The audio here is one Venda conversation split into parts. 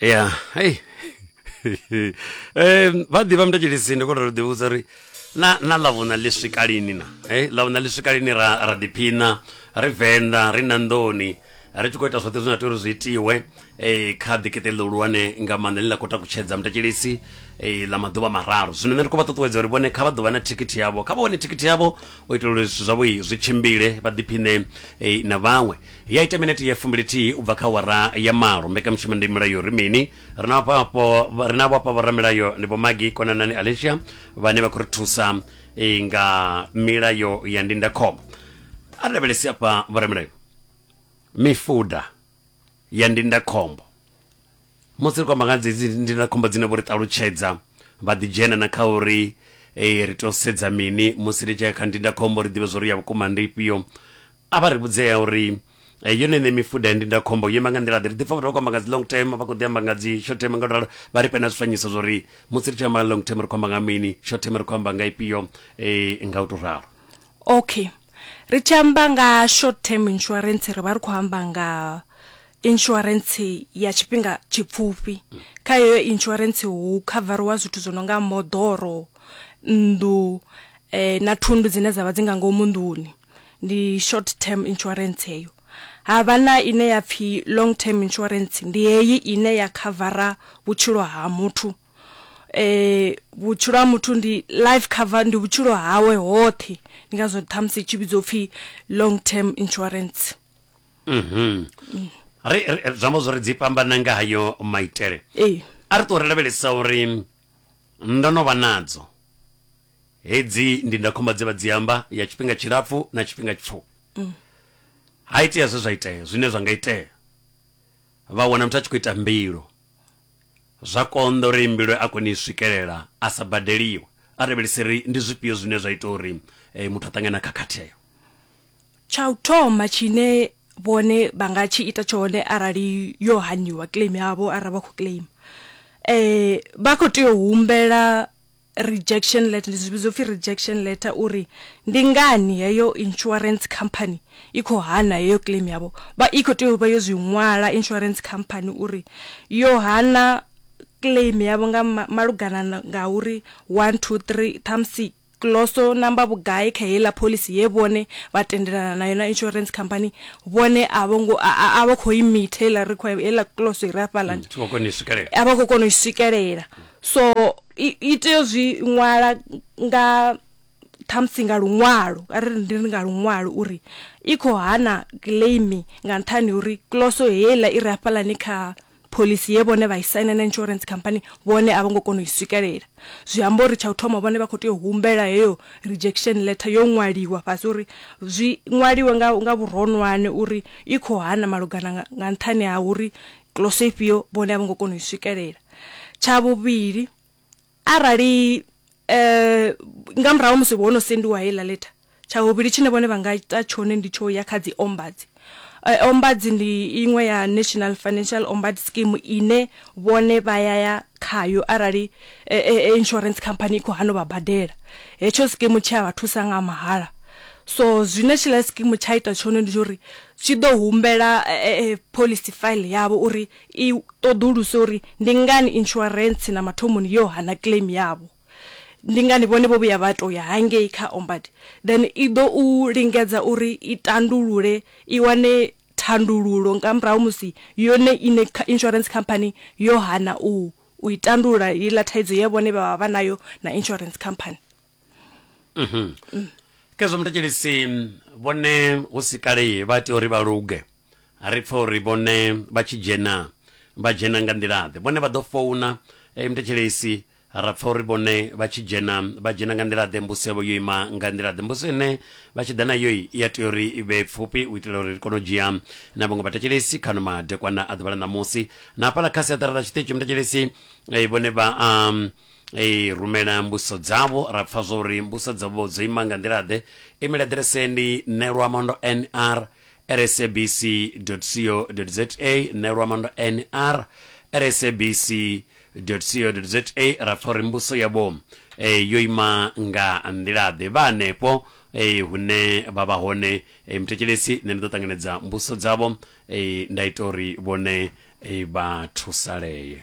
ya hei um vha ḓivha mutatshilisi ndi khou tou ḓivhudza uri na na ḽavhuna ḽi swika lini na e ḽavhuna ḽi swika lini ra ra ḓiphina ri venḓa ri na nḓoni ri tshi khou ita zwoṱhe zwine tea uri zwi itiwe um kha ḓikeṱe ḽo hulwane nga maanḓa ḽi ḽa khou takutshedza mutatshilisi um ḽa maḓuvha mararu zwino nṋe ndi khou vha ṱuṱuwedza uri vhone kha vha ḓovha na thikhithi yavho kha vha wane thikhithi yavho u itela uri zwithu zwavho zwi tshimbile vha ḓiphiṋe na vhaṅwe Ya ita minete ya fumbilithihi u bva kha awara ya malo. Mbekanyamushumo ndi Mulayo Ri Mini? Ri na vhafho ri na vhafha vhoramilayo ndi Vho Maggie Konanani Alicia vhane vha khou ri thusa eh, nga milayo ya ndindakhombo. A ri lavhelesi afha vhoramilayo mifuda ya ndindakhombo. Musi ri khou amba nga dzi dzi ndindakhombo dzine vho ri ṱalutshedza vha ḓi dzhena na kha uri eh, ri tou sedza mini musi ri tshi ya kha ndindakhombo ri ḓivhe zwo ri ya vhukuma ndi ifhio a vha ri vhudzea uri eh, yone ṋe mifuda ya ndindakhombo yo ima nga nḓila ḓe ri ḓi pfa vhathu vha khou amba nga dzi long term vha khou ḓi amba nga dzi short term nga luralo vha ri fhe na zwifanyiso zwo ri musi ri tshi amba nga long term ri khou amba nga mini short term ri khou amba nga ifhio eh, nga u tou ralo okay ri tshi amba nga short term insurance ri vha ri khou amba nga insurance ya tshifhinga tshipfufhi kha heyo insurance hu khavariwa zwithu zwo no nga moḓoro nnḓu eh, na thundu dzine dzavha dzi nga ngomu nḓuni ndi short term insurance heyo havha na ine ya pfhi long term insurance ndi heyi ine ya khavara vhutshilo ha muthu eh vhutshilo ha muthu ndi life cover ndi vhutshilo hawe hoṱhe ndi ngazwo ṱhamusi tshi vhidzwa upfhi long term insurance Mhm. ri ri- ri- zwi amba zwori dzi fhambana nga hayo maitele ee a ri ṱuwa ri lavhelesa uri ndo no vha nadzo hedzi ndindakhomba dze vha dzi amba ya tshifhinga tshilapfu na tshifhinga tshipfufhi ha itea zwe zwa itea zwine zwa nga itea vha wana muthu a tshi khou ita mbilo zwa konḓa uri mbilo a kone i swikelela a sa badeliwe a lavhelese ri ndi zwifhio zwine zwa ita uri eh, muthu a ṱangana khakhatheyo Tsha u thoma tshine vhone vha nga tshi ita tshone arali yo haniwa claim yavho arali vha khou claim eh vha kho tea u humbela rejection letter zwi vhidzwa upfhi rejection letter uri ndi ngani heyo insurance company i kho hana heyo claim yavho vha i kho tea u vha yo zwi ṅwala insurance company uri yo hana claim yavho nga malugana na nga uri one two three ṱhamusi Kloso namba vhugai kha heiḽa phoḽisi ye vhone vha tendelana nayo na insurance company vhone a vho ngo a vho kho i meet heiḽa require heiḽa kloso ire afhaḽa mm, vho kona u swikelela a vha kho kona u swikelela so i tea zwi ṅwala nga thamusi nga luṅwalo a ri ndi nga luṅwalo uri i kho hana claim nga nṱhani uri kloso heiḽa ire afhaḽani kha Phoḽisi ye vhone vha i saina na insurance company vhone a vho ngo kona u i swikelela. Zwi amba uri tsha u thoma vhone vha khou tea u humbela heyo rejection letter yo ṅwaliwa fhasi uri zwi ṅwaliwe nga nga vhuronwane uri i khou hana malugana nga nga nṱhani ha uri kiḽoso ifhio vhone a vho ngo kona u i swikelela. Tsha vhuvhili Arali nga murahu ha musi ho no sendiwa heiḽa letter, tsha vhuvhili tshine vhone vha nga ita tshone ndi tsho ya kha dzi Ombudzi. Ombudzi ndi iṅwe ya National Financial Ombud Scheme ine vhone vha ya ya khayo arali insurance company i khou hana u vha badela. Hetsho sikimu tshi a vha thusa nga mahala. So zwine tshiḽa sikimu tsha ita tshone ndi tsho uri tshi ḓo humbela phoḽisi file yavho uri I ṱoḓuluse uri ndi ngani insurance na mathomoni yo hana claim yavho. Ndi ngani vhone vho vhuya vha tou ya hangei kha Ombud. Then i ḓo u lingedza uri i tandulule, i wane thandululo nga murahu musi yone iṋe insurance company yo hana u i tandulula heiḽa thaidzo ye vhone vha vha vha nayo na insurance company. khezwo mutetshelisi vhone hu si kale vha tea uri vha luge ri pfa uri vhone vha tshi dzhena vha dzhena nga nḓilaḓe vhone vha ḓo founa eh, mutetshelesi ra pfa uri vhone vha tshi dzhena vha dzhena nga nḓilaḓe mbuso yavho yo ima nga nḓilaḓe mbuso ine vha tshi ḓa nayo i ya tea uri i vhe pfufhi u itela uri ri kone u dzhia na vhaṅwe vhathetshelesi khano madekwana a ḓuvha ḽa ṋamusi na hafhaḽa kha siaṱara ḽa tshiṱitshi mutetshelesi eh, vhone vha um, Ee, rumela mbudziso dzavho. Ra pfa zwa uri mbudziso dzavho dzo ima nga nḓila-ḓe? Imela ḓireseni neluamandonr@sabc.co.za, neluamandonr@sabc.co.za, ra pfa uri mbudziso yavho yo ima nga nḓila-ḓe. Vha hanefho hune vha vha hone muthetshelesi, nṋe ndi ḓo ṱanganedza mbudziso dzavho nda ita uri vhone vha thusalee.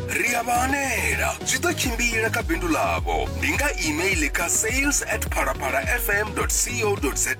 ri a vha hanela zwi ḓo tshimbila kha bindu ḽavho ndi nga email kha sales at phalaphala fm co za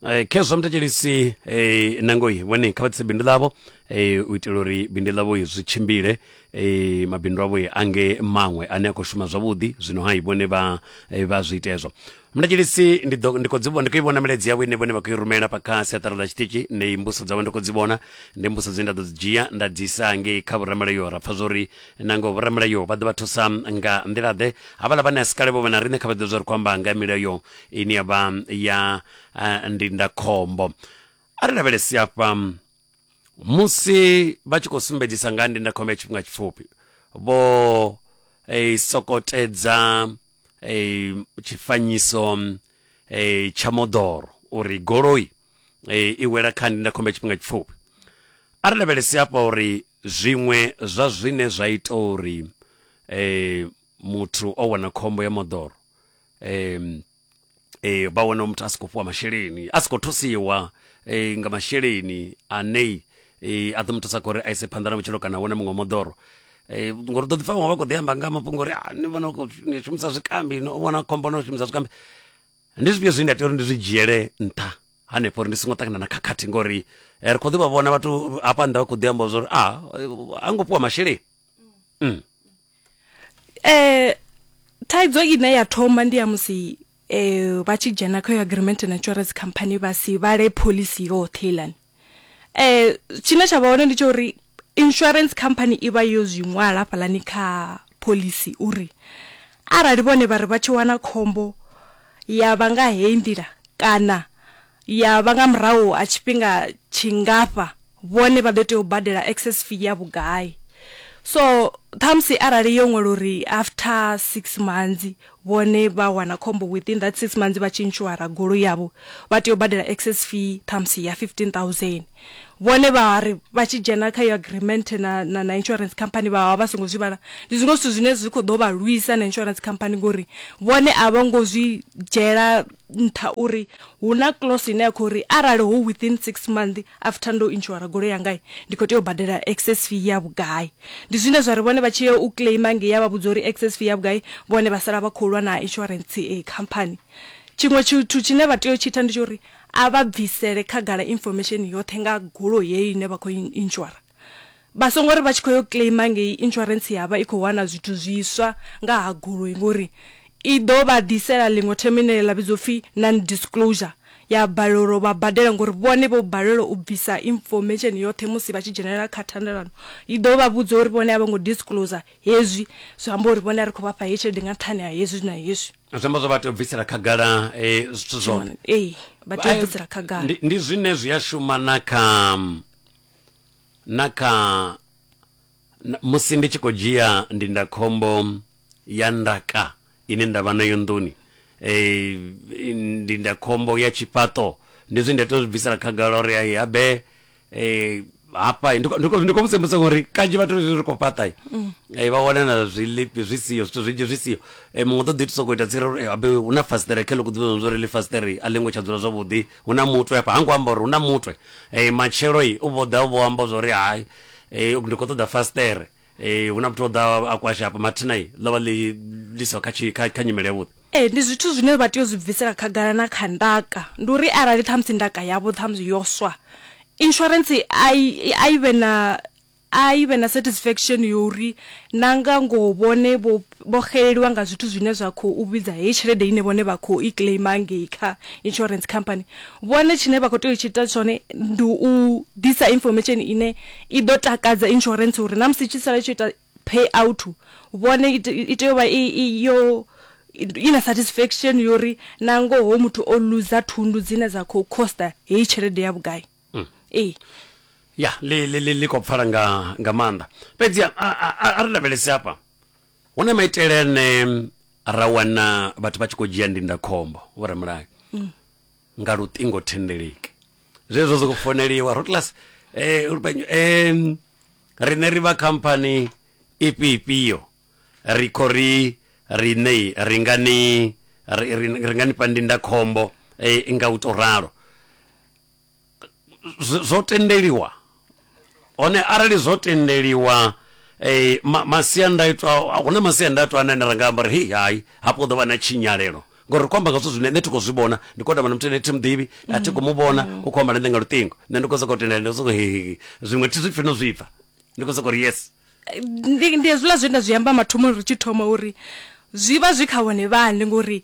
Eh, khezwo mthetshelisi eh, nangoi vhone kha vha ḓise bindu ḽavho eh, u itela uri bindu ḽavho zwi tshimbile eh, mabindu avho ange maṅwe ane a khou shuma zwavhuḓi zwino hai vhone vha eh, vha zwi ita hezwo mladilisi ndi ḓo- ndi khou dzi vhona- ndi khou i vhona milaedza yavho ine vhone vha khou i rumela fha kha siaṱari ḽa tshiṱitshi ndi mbuso dzavho ndi khou dzi vhona ndi mbuso dzine nda ḓo dzi dzhia nda dzi isa ngei kha vhoramilayo ra pfa zwo ri nango vhoramilayo vha ḓo vha thusa nga nḓila-ḓe havhala vhane a si kale vho vha na riṋe kha vha ḓivhe zwa ri khou amba nga milayo ine ya vha ya ah, ndindakhombo a ri lavhelesi afha musi vha tshi khou sumbedzisa nga ha ndindakhombo ya tshifhinga tshipfufhi vho eh, sokotedza eh, tshifanyiso eh, tsha moḓoro uri goloi eh, i wela kha ndindakhombo ya tshifhinga tshipfufhi a ri lavhelesi hafha uri zwiṅwe zwa zwine zwa ita uri eh, muthu o wana khombo ya moḓoro eh, e, vha wana muthu a si khou fhiwa masheleni a si khou thusiwa e, nga masheleni ane e, a ḓo mu thusa khori a ise phanḓa na vhutshilo kana wane muṅwe moḓoro e, ngori ḓo ḓi pfa vhaṅwe vha khou ḓi amba nga mafhungo uri ni vhona u khou shumisa zwikambi no vhona khombo no shumisa zwikambi ndi zwifhio zwine nda tea uri ndi zwi dzhiele nṱha hanefho uri ndi songo ṱangana na khakhathi ngori ri khou ḓi vha vhona vhathu hafha nnḓa vha khou ḓi amba zwa uri a a ngo fhiwa masheleni mm. eh thaidzo ine ya thoma ndi ya musi eh vha tshi dzhena kha agreement na insurance company vha si vhale policy yoṱhe ilani eh tshine tsha vha hone ndi tsha uri insurance company i vha yo zwi ṅwala hafhalani kha policy uri arali vhone vha ri vha tshi wana khombo ya vha nga heyi nḓila kana ya vha nga murahu ha tshifhinga tshingafha vhone vha ḓo tea u badela excess fee ya vhugai so ṱhamusi arali yo ṅwala uri after six months vhone vha wana khombo within that six months vha tshi insuara goloi yavho vha tea u badela excess fee ṱhamusi ya 15000 vhone vha ri vha tshi dzhena kha yo agreement na, na, na insurance company vha vha songo zwi vhala ndi zwiṅwe zwithu zwine zwi khou ḓo vha lwisa na insurance company ngori vhone a vho ngo zwi dzhela nṱha uri hu na clause ine ya khou ri arali hu within six month after ndo inshora golo yanga ndi khou tea u badela excess fee ya vhugai ndi zwine zwa ri vhone vha tshi ya u claima nge ya vha vhudza uri excess fee ya vhugai vhone vha sala vha khou lwa na insurance e eh, company tshiṅwe tshithu tshine vha tea u tshi ita ndi tsha uri a vha bvisele khagala information yoṱhe nga golo yeyo ine vha khou inshora Vha songo ri vha tshi khou yo claimer ngei insurance ya vha i khou wana zwithu zwiswa nga ha goloi ngori i ḓo vha ḓisela ḽiṅwe themo ine ḽa vhidzwa upfhi non disclosure ya balelwa uri vha badela ngori vhone vho balelwa u bvisa information yoṱhe musi vha tshi dzhenelela kha thendelano i ḓo vha vhudza uri vhone a vho ngo disclosure hezwi zwi amba uri vhone a ri khou vha fha heyi tshelede nga nṱhani ha hezwi na hezwi zwi amba zwo vha tea u bvisela khagala eh, zwithu zwoṱhe Tshiṅwe- ee vha tea u bvisela khagala Ndi- ndi zwine zwi a shuma na kha na kha musi ndi tshi khou dzhia ndindakhombo ya ndaka ine nda vha nayo nḓuni eh, ndindakhombo ya tshifhaṱo ndi zwi nda tea zwi bvisela khagala uri ai habe eh, hafha ndi khou musembisa ngori kanzhi vhathu ri khou fhaṱa mm. eh, vha wana na zwilipi zwi siho zwithu zwinzhi zwi siho eh, muṅwe ṱoḓi thusa khou ita tsira uri habe hu na fasiṱere khe ḽo kuḓivha zwo ri ḽi fasiṱere a ḽi ngo tsha dzula zwavhuḓi Hu na mutwe hafha, ha ngo amba uri hu na mutwe. Matshelo u vho ḓa u vho amba zwa uri hai ndi khou ṱoḓa fasiṱere, hu na muthu o ḓaho a kwasha hafha. Mathina ḽo vha ḽi ḽi siho kha tshi, kha nyimele yavhuḓi. Ee, ndi zwithu zwine vha tea u zwi bvisela khagala na kha ndaka. Ndi uri arali ṱhamusi ndaka yavho ṱhamusi yo swa, insurance a i, a i vhe na A i vhe na satisfaction ya uri na nga ngoho vhone vho vho xeleliwa nga zwithu zwine zwa khou vhidza heyi tshelede ine vhone vha khou i claimer ngei kha insurance company. Vhone tshine vha khou tea u tshi ita tshone ndi u ḓisa information ine i ḓo takadza insurance uri na musi i tshi sala i tshi yo ita pay out vhone i i tea u vha i i yo i na satisfaction ya uri na ngoho muthu o loser thundu dzine dza khou coster heyi tshelede ya vhugai. mm. ee ya ḽi ḽi ḽi ḽi khou pfala nga nga maanḓa fhedzi a- a- a- a- a ri lavhelese hafha hu na maitele ane ra wana vhathu vha tshi khou dzhia ndindakhombo vhoramulayo nga luṱingo thendeleki zwezwo zwi khou foneliwa rotlas um riṋe ri vha khamphani ifhio ifhio ri khou ri riṋe ri nga ni ri- ri- ri nga ni fha ndindakhombo eh, nga u tou ralo zwo, zwo tendeliwa hone arali zwo tendeliwa eh, ma, masiandaitwa hu na masiandaitwa ane ra nga amba uri hei hai hafho ḓo vha na tshinyalelo ngori ri khou amba nga zwithu zwine nṋe thi khou zwi vhona ndi khou tamba na muthu ane thi muḓivhi a thi khou mu vhona u khou amba na nṋe nga luṱingo nṋe ndi khou sokou tendela ndi soko hehehe zwiṅwe thi zwi pfhi no zwi pfha ndi khou sokou ri yes ndi ndi hezwiḽa zwe nda zwi amba mathomoni ri tshi thoma uri zwi vha zwi kha vhone vhane ngori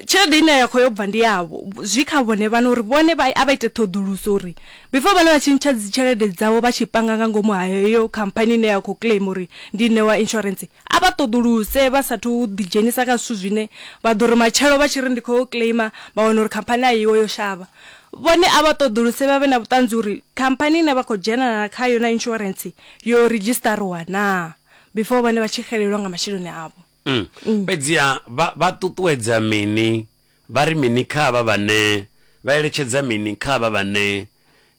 Tshelede ine ya khou yo bva ndi yavho, zwi kha vhone vhaṋe uri vhone vha a vha ite ṱhoḓuluso uri before vhone vha tshi ntsha dzi tshelede dzavho vha tshi panga nga ngomu ha heyo khamphani ine ya khou claim uri ndi Ṋewa Insurance a vha ṱoḓuluse vha sathu ḓi dzhenisa kha zwithu zwine vha ḓo ri matshelo vha tshi ri ndi khou yo claim vha wana uri khamphani a iho yo shavha. Vhone a vha ṱoḓuluse vha vhe na vhuṱanzi uri khamphani ine vha khou dzhenelana khayo na insurance yo ridzhistariwa naa before vhone vha tshi xelelwa nga masheleni avho. Mm. Mm. fhedziha vha vha ṱuṱuwedza mini vha ri mini kha vha vhane vha eletshedza mini kha vha vhane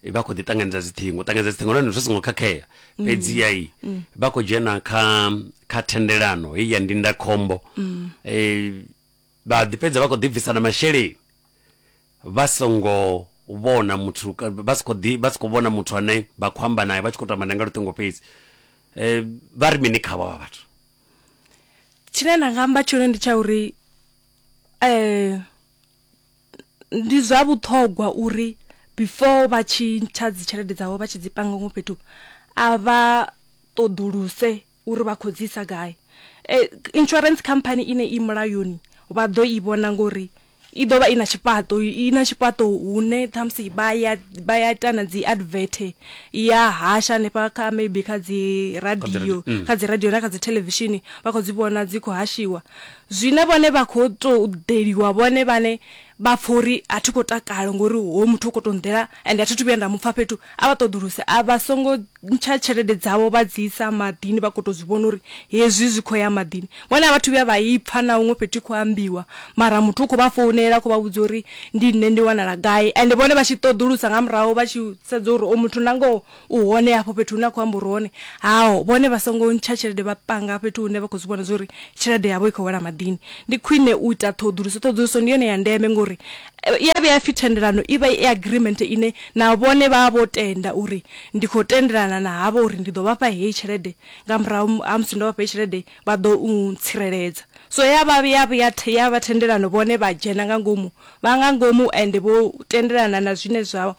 vha khou ḓi ṱanganedza dziṱhingo ṱanganedza dziṱhingo nahone zwi songo khakhea mm. fhedziha i mm. vha khou dzhena kha kha thendelano heyi ya ndindakhombo um vha ḓi fhedza vha khou ḓibvisa na masheleni vha songo vhona muthu vha si khou ḓi vha si khou vhona muthu ane vha khou amba nae vha tshi khou tou amba nae nga luṱingo fhedzi vha ri mini khavho vha vhathu tshine nda nga amba tshone ndi tsha uri um ndi zwa vhuṱhogwa uri before vha tshi ntsha dzi tshelede dzavho vha tshi dzi panga huṅwe fhethu a vha ṱoḓuluse uri vha khou dzi isa gai e, insurance company ine i mulayoni vha ḓo i vhona ngori i ḓo vha i na tshifhaṱo i na tshifhaṱo hune ṱhamusi vha ya vha ya ita na dzi advert ya hasha hanefha kha maybe kha dzi radio mm. kha dzi radio na kha dzi thelevishini vha khou dzi vhona dzi khou hashiwa zwine vhone vha khou tou ḓeliwa vhone vhane vha pfa uri a thi khou takala ngori hoyu muthu u khou tou nḓela ende a thi thu vhuya nda mu pfa fhethu a vha ṱoḓuluse a vha songo ntsha tshelede dzavho vha dzi isa maḓini vha khou tou zwi vhona uri hezwi zwi khou ya maḓini vhone a vhathu vhuya vha i pfa na huṅwe fhethu i khou ambiwa mara muthu u khou vha founela a khou vha vhudza uri ndi nṋe ndi wanala gai ende vhone vha tshi ṱoḓulusa nga murahu vha tshi sedza uri o muthu na ngoho U hone hafho fhethu hune a khou amba uri hone hao vhone vha songo ntsha tshelede vha panga fhethu hune vha khou zwi vhona zwa uri tshelede yavho i khou wela maḓini. Ndi khwine u ita ṱhoḓuluso, ṱhoḓuluso ndi yone ya ndeme ngori i ya vhuya ya pfhi thendelano i vha i agreement ine na vhone vha vha vho tenda uri ndi khou tendelana na havho uri ndi ḓo vha fha heyi tshelede nga murahu ha musi ndo vha fha heyi tshelede vha ḓo u tsireledza. So ya vha ya vhuya ya vha thendelano vhone vha dzhena nga ngomu vha nga ngomu ende vho tendelana na zwine zwa